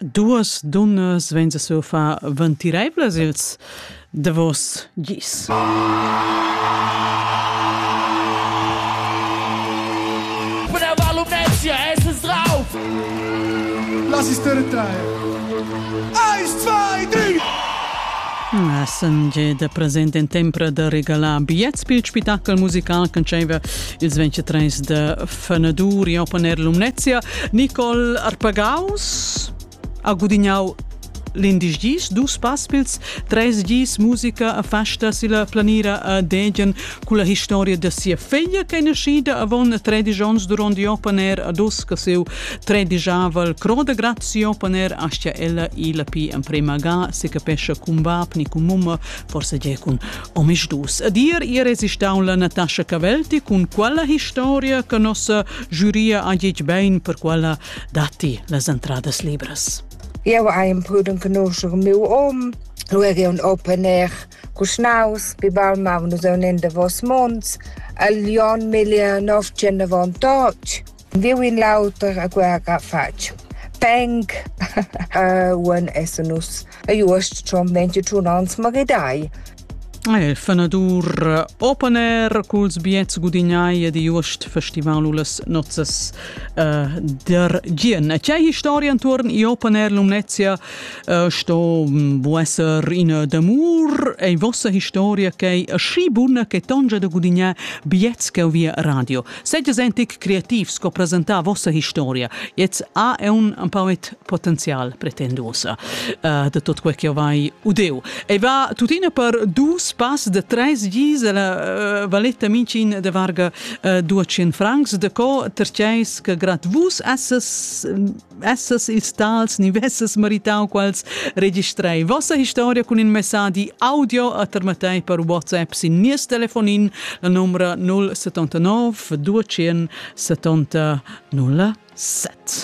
Duos dunnas vain sesur far ventiraivlas ils davos gis. Quella valumnezia es drauf! Lass es trair! Eins, zwei, drei! Essen da present in tempra da regalar bigliets pel spettacol musical che dschaiva ils 23 da fenadur in opponer Lumnezia, Nicol Arpagaus ha gudignau l'indisch gis, dus paspils, tres gis musica a festa si la planira a Degen cu la historia da sia figlia che è nascida avon 13 onns duront il opponer a dus che seu tredigiava il cro de grazie opponer astia ella i la pi emprema ga si capesce cun bab ni cun mumma forse ge cun Omisdus ed ir irresistaun la Natascha Cavelti cun quella historia che nossa giuria ha git bein per quella datti las entradas libras. Eu ha imprudent conoscer meu om, lu er un open air Kuschnaus, bi balma nus un in davos monds, al Jon Millier 990 Viu in l'auter a guerra fatg peng uon essan nus e uost schon ventitun ans maridai. E fenadur open air culs biets gudignai ed uost festival ullas nozzas uh, der Gien. E c'è historia intorn i open air Lumnezia uh, sto bu esser ina d'amur e vossa historia che è schi bunna che tongia da gudignare biets che via radio. Seid es tic creativ sco presentar vossa historia. Jetzt ha è un empauet potenzial pretenduosa uh, de tot quel che vai udeu. E va tuttina per dus pass de tres gis la uh, valetta mincin de varga uh, 200 francs de co terceis che grad vus esses vesses ils tals ni vesses meritau quals registrai vossa historia cun in messadi audio a termatei per WhatsApp sin nies telefonin la numra 079 270 07.